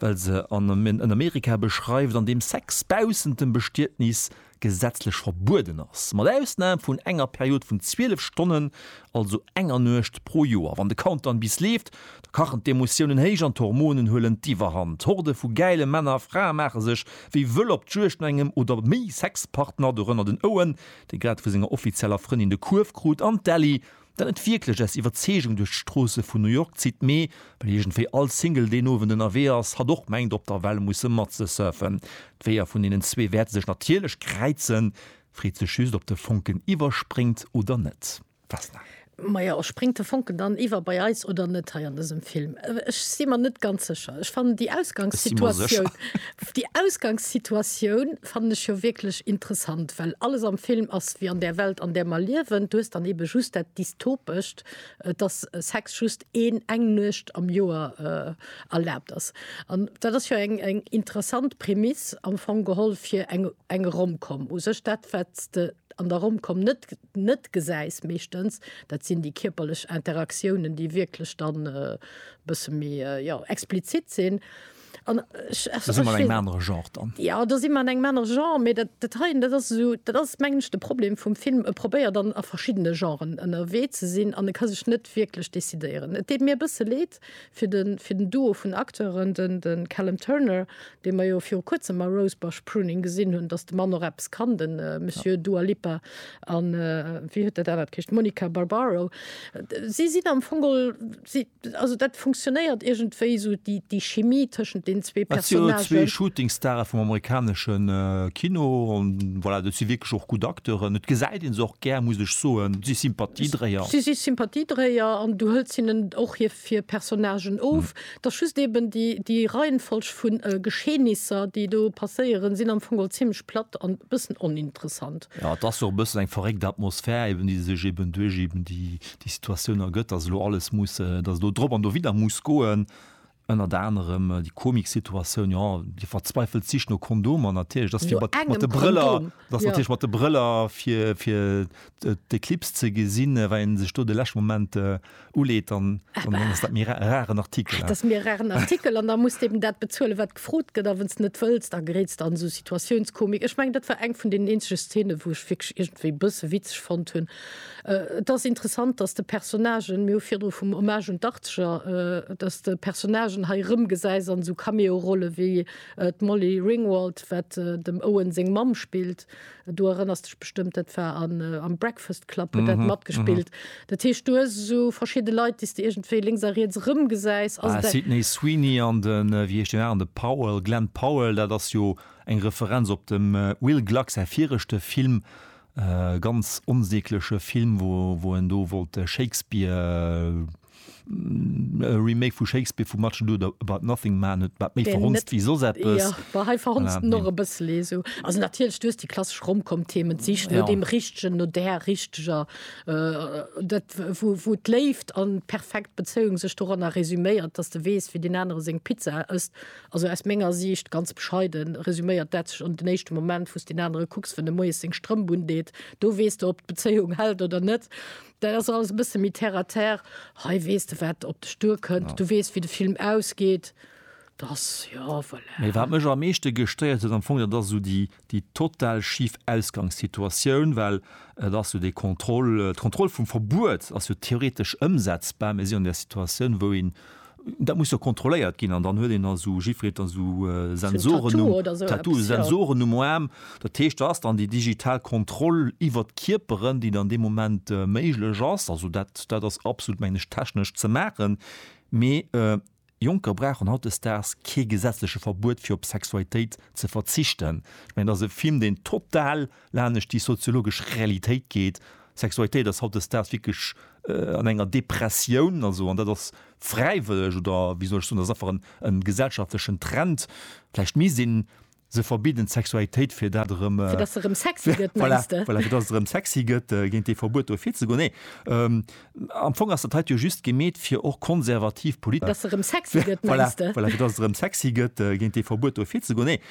well se en Amerika beschreift, an deem Sex baussent dem Bestietnis gesetzlech verbueden ass, mat Ausnam vun enger Period vun 12 Stonnen, also enger Nuecht pro Joer. Wann de Countdown bis leeft, da kachen d'Emotiounen héich an d'Hormonen huelen d'Iwwerhand. Horde vu gäile Männer a Frae maache sech wéi wëll op d'Juegd no engem oder méi Sexpartner, dorënner den Owen, dee grad vu senger offizieller Frëndin de Kuerf krut, an d'Ellie, Dat net wierklech aus Iwwerzeegung duerch d'Stroosse vun New York zitt, mee well iergendwéi all Single deen Owend ënnerwee ass, hatt och mengt op der Well musse matzesurfen. D'Weeër vun deenen zwee wäerte sech natierlech kräizen, freet sech just op de Fonken iwwerspréngt oder net. Fasnacht. Majo, spréngt de Fonken dann iwwer bei eis oder net hei an dësem Film? Ech si mer net ganz sécher. Ech fannen déi Ausgangssituatioun, déi Ausgangssituatioun Fannen ech jo wierklech interessant, well alles am Film ass ewéi an där Welt an där mer liewen. Du hues dann eben just dat Dystopescht, dass Sex just een eng Nuecht am Joer erlaabt ass. An dat ass jo eng eng interessant Prämiss am Fong geholl fir eng eng Rom-Com. U sech dat wat s de an der Rom-Com net net gesäis meeschtens, dat sinn déi kierperlech Interaktiounen, déi wierklech dann e bësse méi jo explizit sinn. An ech, ech, ech wéi, ja, do si mer an engem anere Genre, mee dat, dat heien, dat ass esou, dat ass mengen ech de Problem vum Film, e probéiert an a verschiddene Genren ënnerwee ze sinn an e ka sech net wierklech decidéieren. Et deet mir e bësse Leed fir de fir den Duo vun Acteuren, den de Callum Turner, dee mer jo viru Kuerzem a Rosebush Pruning gesinn hunn, datt de Mann och eppes kann, de Monsieur Dua Lipa an, wéi huet dat anert geheescht, Monica Barbaro. Si sinn am Fong geholl, si, Also dat funktionéiert iergendwéi esou, déi, déi Chimie tëschent deenen zwee Dat si jo zwee Personnagen. Shootingstare vum amerikanesche Kino an voilà, dat si wierklech och gutt Acteuren. Et gesäit ee se och gär, muss ech soen. Si Sympathiedréier. Si si Sympathiedréier an du hëls hinnen och hir, hir Personnagen of. Et ass just eeben déi, déi Reihenfolg vu Geschehnisser, déi do passéieren, sinn am Fong all zimmlech platt an e bëssen oninteressant. Jo, et ass och e bëssen eng verréckt Atmosphär, eeben déi sech eeben duerch eeben déi, déi Situatioun ergëtt, dass elo alles muss, dass elo drop an dowidder muss goen, ënnert anerem déi komik Situatioun, jo, déi verzweifelt Sich no Kondomer natierlech, dass fir mat mat de Brëller, dass natierlech mat de Brëller fir fir d'Eclipse ze gesinn, well een sech do de leschte Moment uleet, dann dann ass dat méi ra raren Artikel. Dat ass méi e raren Artikel an da muss de eben dat bezuelen, wat gefrot gëtt a wann s de net wëlls, da geréits de an esou Situatiounskomik. Ech mengen, dat war eng vun deenen eenzege Szene, wou ech wierklech iergendwéi e bësse witzeg fonnt hunn. Et ass interessant, dass de Personnagen, mir hu virdru vum Hommage un d'Achtzeger, dass de Personnagen hei erëmgesäis an esou Cameo-Rolle wéi d'Molly Ringwald, wat dem Owen seng Mamm spillt. Du erënners dech bestëmmt, dat war am Breakfast Club huet dat matgespillt. Dat heescht, du hues esou verschidde Leit, déi s de iergendwéi lénks a riets erëmgesäis. Sydney Sweeney an de, wéi heescht deen aneren, de Powell, Glen Powell, dat ass jo eng Referenz op dem Will Gluck säi viregte Film, E ganz onsägleche Film, wou en do wollt Shakespeare, e Remake vu Shakespeare vu Much Ado About Nothing maachen, huet dat méi verhonzt wéi soss eppes. Jo, hei verhonzt en och e bëssel esou. Also natierlech, du hues déi klassesch Rom-Com-Themen, d'Sich no deem Richtegen, no där Richteger, dat wou d'Léift an d'perfekt Bezéiung sech doranner resuméiert, dass de weess, wéi deen anere seng Pizza ësst Also aus menger Siicht, ganz bescheiden, resüméiert dat sech an den éischte Moment, wou s deen anere kucks, wann e moies seng Strëmp undeet, do weess de, ob d'Bezéiung hält oder net. Dat ass alles e bësse méi terre à terre. Hei weess de, wat op dech duerkënnt, du weess, wéi de Film ausgeet. Dat ass, jo, voilà. Mee wat mech am meeschte gestéiert huet am Fong, dat ass esou déi déi total schif Ausgangssituatioun, well et ass jo déi Kontroll, d'Kontroll vum Verbuet ass jo theoretesch ëmsetzbar, mä si an där Situatioun, wou een, dat muss jo kontrolléiert ginn an dann huet een da sou Gifreten, esou Sensoren, Tattoo, Sensoren um Aarm. Dat heescht, do ass dann déi digital Kontroll iwwert d'Kierperen, déi dann dee Moment méiglech ass. Also dat, dat ass absolut, mengen ech, technesch ze maachen, mä Jonker brauchen hautdesdaags kee gesetzleche Verbuet fir op Sexualitéit ze verzichten. Ech mengen, et ass e Film, deen total lanescht déi soziologesch Realitéit geet. Sexualitéit ass hautdesdaags wierklech an enger Depressioun, also, an dat ass fräiwëlleg oder wéi soll ech soen, dat ass einfach en gesellschaftlechen Trend. Vläicht misst een Se verbidden d'Sexualitéit, fir dat erëm. Fir dass se erëm sexy gëtt, mengs de? Voilà, fir dass et erëm sexy gëtt, géint dee Verbuet do virzegoen. Nee, am Fong ass dat hei jo just gemeet, fir och konservativ Polit. Dass se erëm sexy gëtt, mengs de? Voilà, voilà, fir dass et erëm sexy gëtt, géint dee Verbuet do virzegoen. Nee.